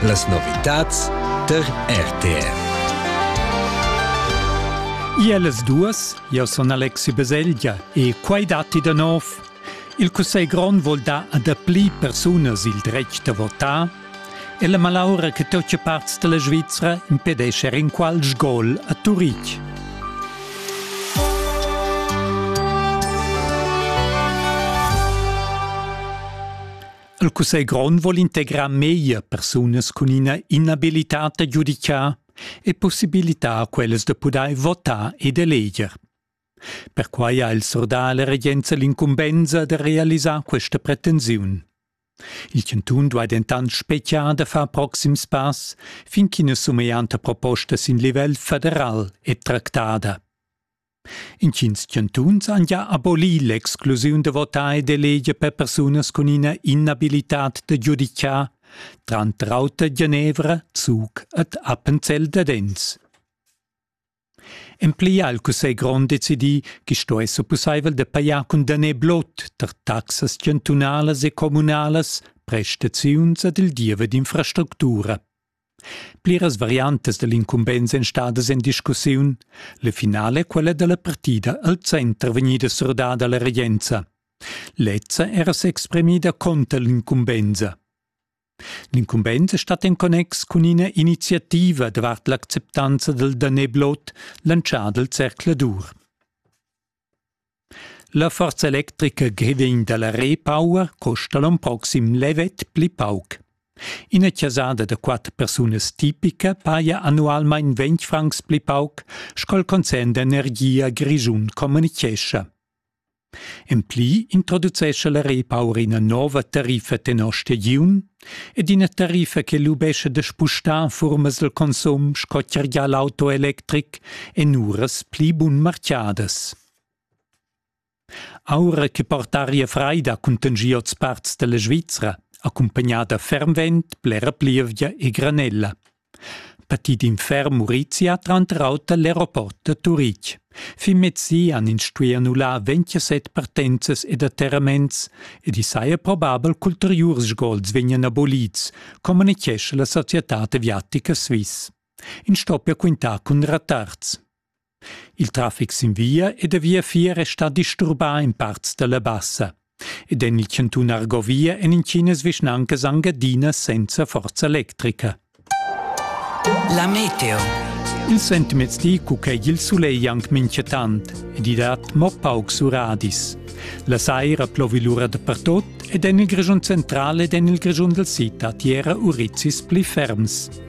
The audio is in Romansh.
Las novitads tar RTR. Iellas duas, io son Alexi Beselgia e quai datti da nov. Il Cussegl grond vuol dar a dapli persunas il dretg da votar e la malaura che tutte parts della Svizzera impedisce in qual sgol a Turitg. Il cussegl grond vuol integrar meglier persunas cun ina inabilitad da giudicar e possibilitar quellas da pudair votar ed eleger. Perquai ha il surdà la regenza l'incumbensa da realisar questa pretensiun. Il chantun duai dentant speziar da far proxims pass fin ch'ina sumeglianta proposta sin livel federal è tractada. Intgins chantuns han gia abolì l'exclusiun da votar ed eleger per persunas cun ina inabilitad da giudicar, tranter auter Genevra, Zug ed Appenzell Dadenz. En pli ha il Cussegl grond decidì che sto esser pussaivel da pajar cun daner blot tar taxas chantunalas e communalas prestaziuns ed il diever d'infrastructura. Pliras variantas dall'incumbensa ein stadas en discussiun. La finala è quella dalla partida al center vegnida surdada alla regenza. Lezza era s'exprimida conter l'incumbensa. L'incumbensa stat en connex cun ina iniziativa davart l'acceptanza dal daneblot lantschà dal zercladur. La forza electrica Gridin dalla Repower custa l'onn proxim levet pli pauc. Ina chasada da quatter persunas tipica paja annualmein ventg francs pli pauc sco'l concern d'energia grischun communichescha. En pli introducescha la Repower ina nova tariffa tenor stagiun ed ina tariffa che lubescha da spustar en furmas del consum sco tgergia l'auto electric en uras pli bunmarchiadas. Aura che portaria freida cuntengia oz parts della Svizzera, accompagnada fermvent blera plievgia e granella. Parti d'in ferm Murizia tranter auter l'aeroport da Turitg. Fin mezzi han ins stuì annullar 27 partenzas ed atterraments ed i saja probabel ch'ulteriurs sgols vegnan abolids, communitgescha la societad aviatica Swiss. Ins stoppia quintar cun rettards. Il trafic sin via e da viafier è stà disturbà in parts da la Bassa. Ed en il chantun Argovia èn intginas vischnancas anc adina senza forza electrica. La meteo. Il sentiments di cu ch'è il sulegl anc minchatant ed i dat mo paucs uradis. La saira plovi lura dapertut ed en il Grischun central ed en il Grischun dal sid dat era urizis pli ferms.